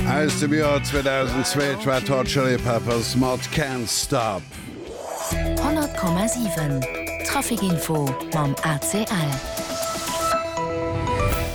Aus dem Joer 2002 d'Red Hot Chili Peppers mat Can't Stop. 100,7 Traficinfo mam ACL.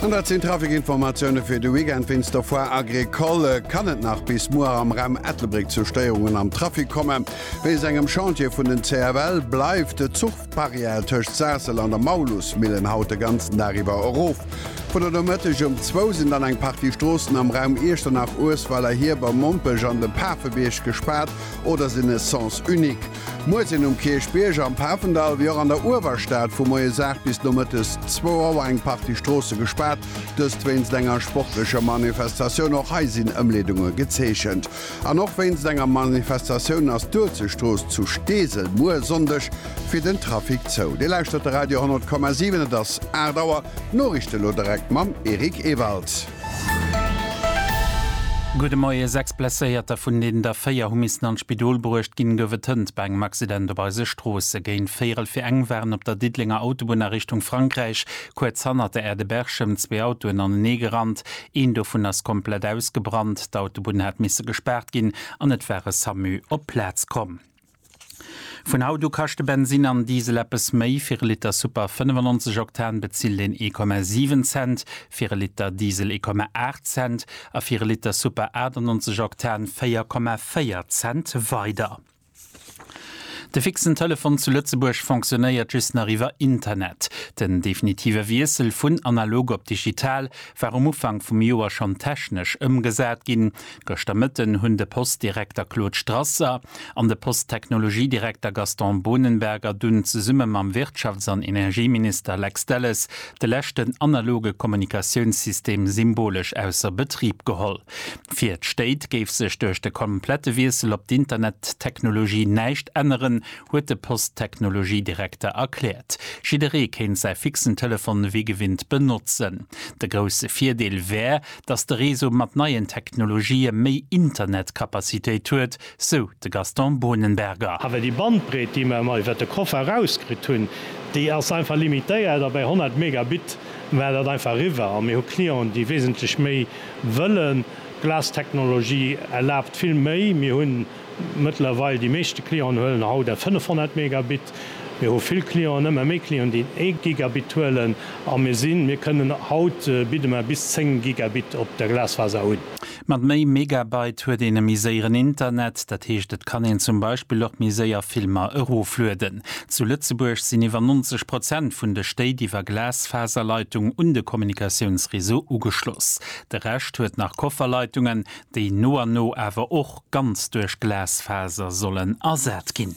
An dat sinn d'Traficinformatioune fir de Weekend. Wéinst der Foire Agricole kann et nach bis muer am Raum Ettelbréck zu Stéierungen am Trafic kommen. Wéinst engem Chantier vun den CFL bleift de Zuch. D'Barrière tëscht Saassel an der Maulusmillen haut de ganzen Dag iwwer erof. Vun der Nomëtteg um zwou sinn dann eng Partie Stroossen am Raum Iechternach, Uesweller, Hieber, Mompech an dem Pafebierg gespaart oder sinn e Sens unique. Muer sinn um Kierchbierg, am Pafendall wéi och an der Uewerstad vu moies 8 bis nomëttes zwou Auer eng Partie Stroosse gespaart, dëst wéinst enger sportlecher Manifestatioun. Och hei sinn Ëmleedunge gezeechent. An och wéinst enger Manifestatioun ass d'Uelzechtstrooss zu Steesel muer Sonndeg fir den Trafic zou. Dir lauschtert de Radio 100,7, et ass 8 Auer. D'Noriichten elo direkt mam Eric Ewald. Gudde Moie. Sechs Blesséierter, vun deenen der véier hu missen an d'Spidol bruecht ginn, gouf et hënt bei engem Accident op eise Stroosse. Géint véierel fir eng waren op der Diddelenger Autobunn a Richtung Frankräich kuerz hannert der Aire de Berchem zwee Autoen aneneegerannt. Een dovun ass komplett ausgebrannt, d'Autobunn hat misse gespaart ginn an et war e Samu op d'Plaz komm. Vun haut u kaschte Bensinn an Diesel eppes méi, fir e Liter Super 95 Oktan bezilt een ee Komma siwen Cent, fir e Liter Diesel ee Komma aacht Cent a fir e Liter Super 98 Oktan véier Komma véier Cent weider. De fixen Telefon zu Lëtzebuerg fonctionnéiert just nach iwwer Internet. Den definitive Wiessel vun analog op digital war um Ufank vum Joer schonn technesch ëmgesat ginn. Gëschter Mëtten hunn de Post-Direkter Claude Strasser an de Post-Technologie-Direkter Gaston Bohnenberger dunn zesumme mam Wirtschafts an Energieminister Lex Delles de leschten analoge Kommunikatiounssystem symbolesch ausser Betrib geholl. Fir d'Stéit géif sech duerch de komplette Wiessel op d'Internettechnologie näischt änneren, huet de Posttechnologiedirekter erkläert. Jidderee kéint säi fixen Telefon wéi gewinnt benotzen. De grousse Virdeel wär, datt de Réseau mat neien Technologië méi Internetcapacitéit huet, sou de Gaston Bohnenberger. Awer déi Bandbreet, déi mer emmer iwwert de Koffer erauskritt hunn, déi ass einfach limitéiert a bei 100 Megabit war dat einfach eriwwer. A mir hu Clienten, déi wesentlech méi wëllen. D'Glas-Technologie erlaabt vill méi. Mir hu mëttlerweil, déi meeschte Clienten huelen haut eng 500 Megabit. Mir hu vill Clienten, ëmmer méi Clienten, déi en ee Gigabit huelen. A mir sinn, mir kënnen, haut bidde mer bis 10 Gigabit op der Glasfaser un. Mat méi Megabyte huet een e méi séieren Internet, dat heescht et kann een zum Beispill och méi séier Filmer eroflueden. Zu Lëtzebuerg sinn iwwer 90 Prozent vun de Stéit iwwer Glasfaserleitung un de Kommunikatiounsreseau ugeschloss. De Rescht huet nach Kofferleitungen, déi no an no awer och ganz duerch Glasfaser sollen ersat ginn.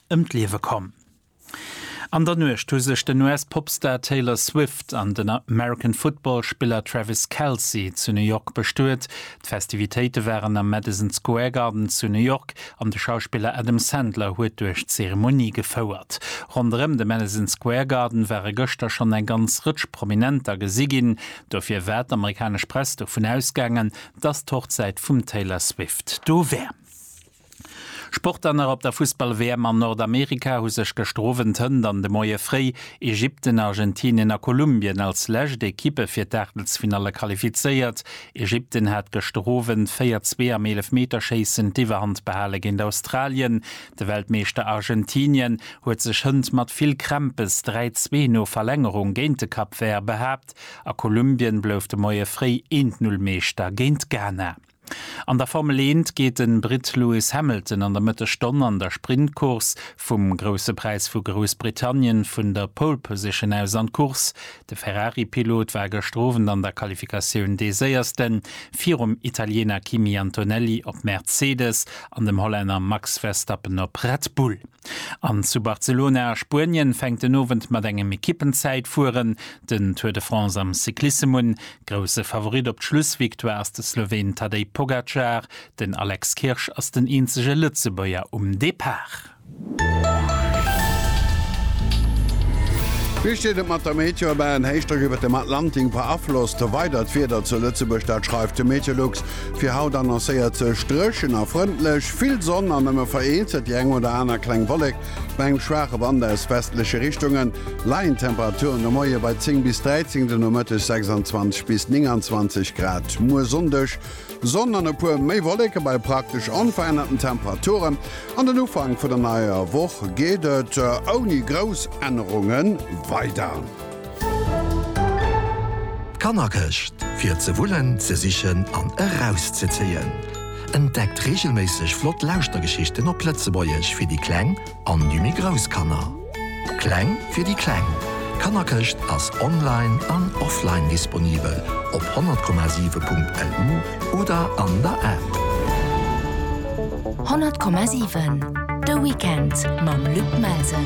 ëm d'Liewe komm. An der Nuecht hu sech den US-Popstar Taylor Swift an den American Football Spiller Travis Kelce zu New York bestuet. D'Festivitéite waren am Madison Square Garden zu New York an de Schauspiller Adam Sandler huet duerch d'Zeremonie gefouert. Ronderëm de Madison Square Garden ware gëschter schonn eng ganz Rëtsch Prominenter gesi ginn. Dofir war d'amerikanesch Press dovun ausgaangen, dass d'Hochzäit vum Taylor Swift do wär. Sportler nach op der Fussball-WM an Nordamerika hu sech gëschter Owend, Hënt an de Moie fréi, Ägypten, Argentinien a Kolumbien als lescht Ekippe fir d'Aachtelsfinalle qualifizéiert. Ägypten hat gëschter Owend 4, 2 am Eelefmeterschéissen d'Iwwerhand behale géint Australien. De Weltmeeschter Argentinien huet sech Hënt mat vill Krämpes 3, 2 no Verlängerung géint de Cap Vert behaapt a Kolumbien blouf de Moie fréi 1, 0 Meeschter géint Ghana. An der Formel Eent geet de Britt Lewis Hamilton an der Mëttesstonn an der Sprintcourse vum Grousse Präis vu Groussbritannien vun der Pole Position aus an d'Course. De Ferrari-Pilot war gëschter Owend an der Qualifikatioun dee Séierste virum Italiener Kimi Antonelli op Mercedes an dem Hollänner Max Verstappen op Red Bull. An zu Barcelona a Spuenien fänkt den Owend mat engem Ekippenzäitfueren den Tour de France am Cyclissem un. Grousse Favorit op d'Schlussvictoire ass de Sloween Tadej Pogacar, den Alex Kirsch ass den eenzege Lëtzebuerger um Depart. Wéi steet et mat der Meteobahn? Héichdrock iwwert dem Atlantik beaflosst weider d'Wieder zu Lëtzebuerg, dat schreift de Meteolux. Fir haut annoncéiert sech dréchen a frëndlech, vill Sonn an nëmme vereenzelt déi eng oder aner kleng Wollek. Bei engem schwaache Wand aus westleche Richtunge leien d'Temperaturen de Moie bei 10 bis 13, den Nomëtteg 26 bis 29 Grad. Muer Sonndeg Sonn an e puer méi Wolleke bei praktesch onverännerten Temperaturen. An den Ufank vun der neier Woch geet et ouni grouss Ännerunge weider. D'Kannerkëscht, fir ze wullen, ze sichen an erauszezéien. Entdeckt reegelméisseg flott Lauschtergeschichten op Lëtzebuergesch fir déi kleng an déi méi grouss Kanner. Kleng fir déi Kleng, D'Kannerkëscht ass online an offline disponibel op 100,7.lu. oder an der App. 100,7 De Weekend mam Luc Melsen.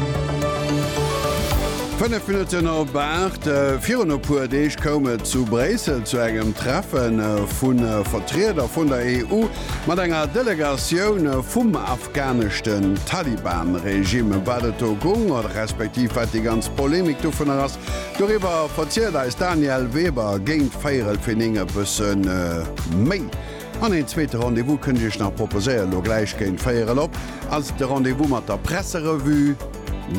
Fënnef Minutten op aacht. Virun e puer Deeg koum et zu Bréissel zu engem Treffe vu Vertrieder vun der EU mat enger Delegatioun vum afghaneschten Taliban-Regime. Ëm wat et do goung oder respektiv wat déi ganz Polemik dovunner ass, Doriwwer verzielt eis Danièle Weber géint véierel fir 9 e bësse méi. An een zweete Rendez-vous kënnt Iech nach proposéiert. Elo gläich géint véierel op ass de Rendez-vous mat der Presserevue.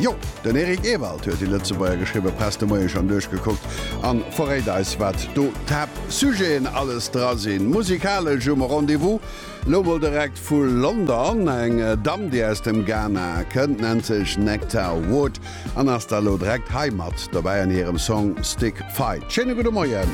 Jo, den Eric Ewald huet déi Lëtzebuerger geschriwwe Press de Moie schonn duerchgekuckt a verréit eis, wat do d'Haaptsujeten alles dra sinn. Musikalesch um Rendez-vous elo mol direkt vu London eng Damm, déi aus dem Ghana kënnt, nennt sech Nectar Wood. an ass da lo dreckt hei mat dobäi an hirem Song Stick Fight. Schéine gudde Moien.